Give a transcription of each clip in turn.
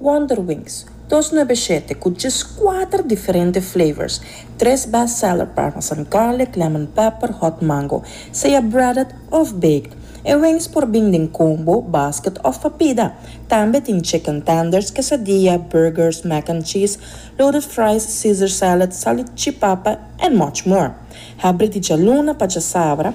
Wonderwings, dos nuebe shete ku djes kuater diferente flavors, tres best seller parmesan garlic, lemon pepper, hot mango, sea breaded òf baked. E wings por bin den combo, basket òf papida. Tambe tin chicken tenders, quesadilla, burgers, mac and cheese, loaded fries, caesar salad, salutchipapa and much more. Habri di djaluna pa djasabra.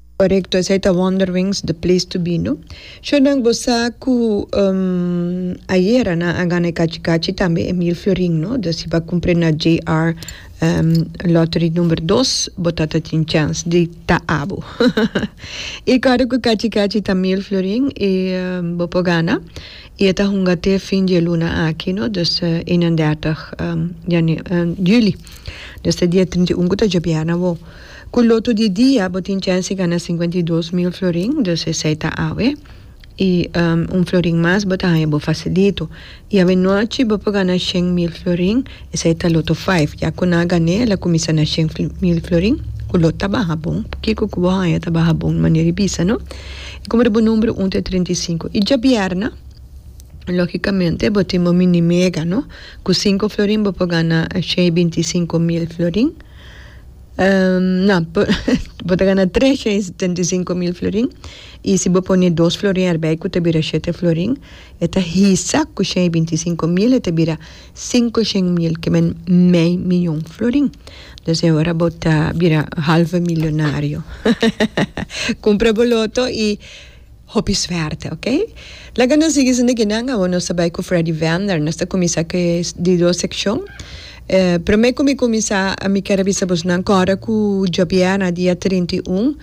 Korekto esei ta Wonderwings The Place To Be no. Shornan bo sa ku ayera nan a gana e kachi kachi tambe Emil Florin no do si bo a kumpre na JR lottery number dos bo ta ta tin chance di ta abo i kòrda ku kachi kachi ta Mil Florin i bo por gana i e ta hunga te fin di e luna aki no dus eenendertig juli dus ta dia trinta i un ku ta djobièrna awor. Ku lotu di dia bo tin chèns di gana sinkuenta i dos mil florin, dus esei ta awe i un florin mas bo ta haña bo fasilitu. I awe nochi bo por gana shen mil florin, esei ta loto faif. Ya ku nan a gan'é el a kuminsá na shen mil florin, ku lot ta baha bon. Kiko ku bo haña ta baha bon manera i bisa no? I komo ta bo numbru un ta e trinta i sinku i djabièrna, lógikamente bo tin bo mini mega no? Ku sinku florin bo por gana shei binti sinku mil florin. Na, bo ta gana tres chei setenta i sinku mil florin, i si bo pone dos florin erbei ku ta bira shete florin, e ta hisa ku shei i binti sinku mil e ta bira sinku shen mil, ke men mei miyon florin. Dus e ora bo ta bira halve milionario. Kumpra bo loto i. Hopi suerte ok. Laga nos sigui sinda guinan awor nos ta bay cu Freddy Vender nos ta cuminsa cu e di dos seccion eh prome cu mi cuminsa ami ker a bisa bos nan cora cu djobiea na dia trinta y un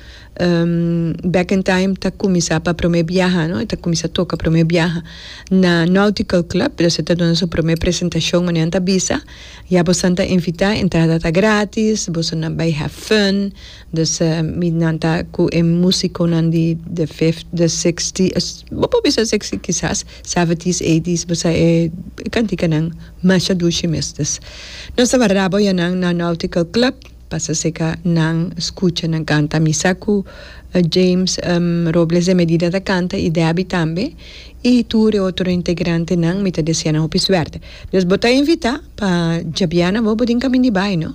Back in Time ta cuminsa pa prome biaha no e ta cuminsa toca prome biaha na Nautical Club entonces e ta duna su prome presentacion manera nan ta bisa ya bosnan ta invita entrada ta gratis bosnan bay have fun Des mi nan ta cu e musiconan di the fifth, the sixth, bo por bisa sixty kisas seventies, eighties bo sa e canticanan masha dushi mes. Des nos ta warda boya nan na Nautical Club pa sa seca nan scucha nan canta. Mi sa cu James Robles de Medina ta canta y Debbie tambe y tur e otro integrantenan mi ta desea nan hopi suerte. Des bo ta invita pa djabiana bo bo tin camin di bay no.